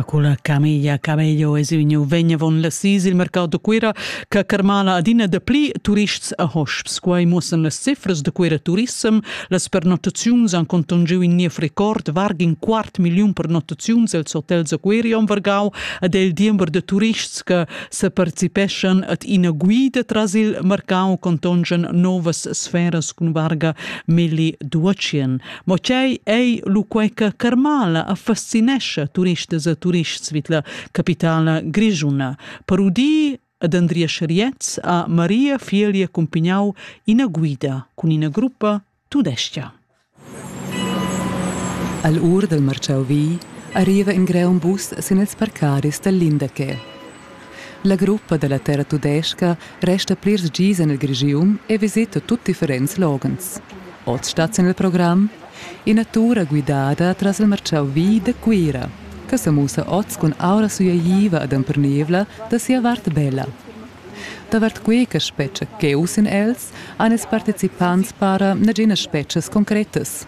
Cun la camilla Camello es ün nouv vegnavon las sis il mercau da Cuira che carmala adina dapli turists a hosps. Quai muossan las cifras da Cuira Turissem. Las pernottaziuns han contungiu in niev record, varg in quart milliun pernottaziuns els hotels a Cuira am Vargau ed è il diember da turists che separticipeschan ad ina guida tras il mercau contongian novas sferas cun varga milli duatschien. Mo tgei ei lu quei che Carmala affascinescha turistas e turists vid la capitala grischuna? Per udir ad Andrea Scharietz a Maria Fielia cumpignau ina guida cun ina gruppa tudestga. All ur del Marciau vi arriva in greun bus sin ils parcaris del Lindeque. La gruppa da la terra tudestga resta plirs gis en il Grischun e visita tut differents loghens. Oz stat sin il program ina tur guidada tras il martgau vi da Cuira che sa mussa oz cun aura sueiva ed empernivla da sia vart bella. Davart quei che spetga cheu sin els han ils participants para naginas spetgas concretas,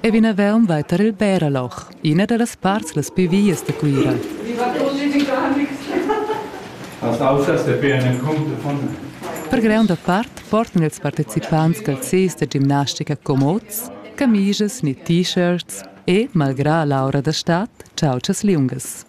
e vinavon vai tar il Bärerloch, ina dallas parts las pli vias da Cuira. Las aussas depean en cumple von Per gronda part portan ils participants calzis da gimnastica comods, camisas ni t-shirts e, malgrà l'aura da stad, chautschas liungas.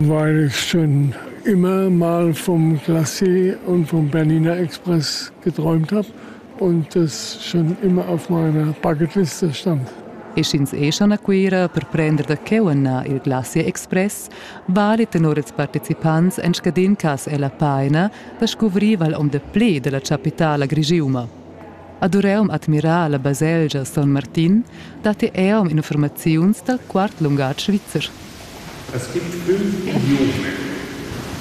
Vair es ün üma mal vom Glacé und vom Bernina Express geträumt hab und das schon immer auf meiner Bucketliste stand. E sch'ins è schon a Cuira per prender da cheu ennà il Glacier Express, vali tenor ils participants en scadin cas è la paina da scuvrir val om de ple della chapitala grigiuma. Ad Ureum admirar la baselgia Son Martin datti eom infurmaziuns dal quart lungatg svizzer. Es gibt fünf Idiome.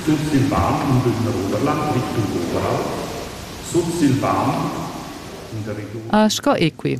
Sursilvan in den Ruderland Richtung Oberalp, Sursilvan in der Region. Ah, sco equi!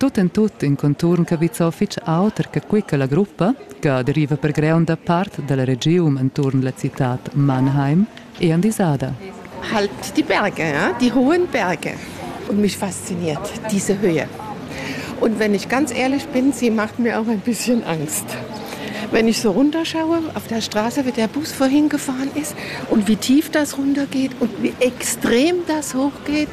Tut en tut in conturn capizzau fetg auter che quei che la gruppa, che deriva per gronda part dalla regiun entuorn la citad Mannheim, è andisada. Halt die Berge, ja? die hohen Berge. Und mich fasziniert diese Höhe. Und wenn ich ganz ehrlich bin, sie macht mir auch ein bisschen Angst. Wenn ich so runterschaue, auf der Straße, wie der Bus vorhin gefahren ist und wie tief das runtergeht und wie extrem das hochgeht,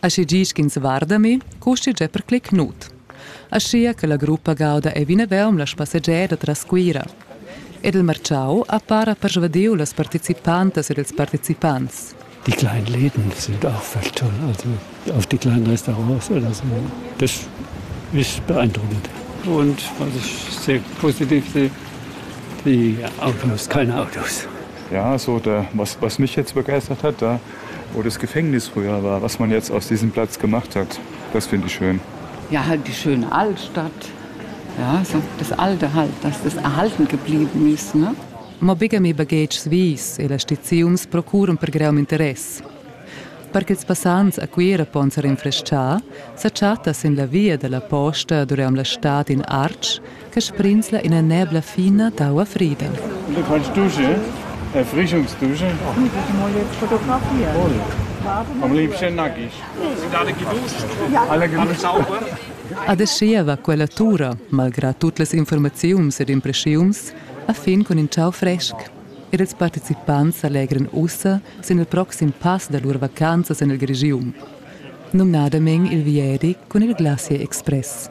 Aschi gi sch'ins varda mi, custi già per clic nud. Aschia che la gruppa gauda ei vinavon la spassegiada tras Cuira. Ed il marciau ha para persvadiu las participantas ed ils participants. Die kleinen Läden sind auch fast toll. Also auf die kleinen Restaurants oder so. Das ist beeindruckend. Und was ich sehr positiv sehe, die Autos, keine Autos. Ja, so der, was, was mich jetzt begeistert hat, da oder das Gefängnis früher war, was man jetzt aus diesem Platz gemacht hat. Das finde ich schön. Ja, halt die schöne Altstadt. Ja, so das Alte halt, dass das erhalten geblieben ist. Ne? Ma begem i baghetgs vis e las stiziuns procuran per greum interess. Per ch'ils passants a Cuira pon se rinfreschar, sa chatta sin la via dalla posta dureum la stad in Artsch che sbrinzla ina nebla fina d'aua frida. Du fais dusche, Erfrischungsdusche? Fotografia. Toll. Am liebsten nackig. Alla sauber. Adeschia va quella tura, malgrà tut las informaziuns ed impressiuns, a fin cun in ciao fresc. Ed ils participants allegran ussa sin il proxim pass da lur vacanzas en il Grigium, numnadamain il vieri cun il Glacier Express.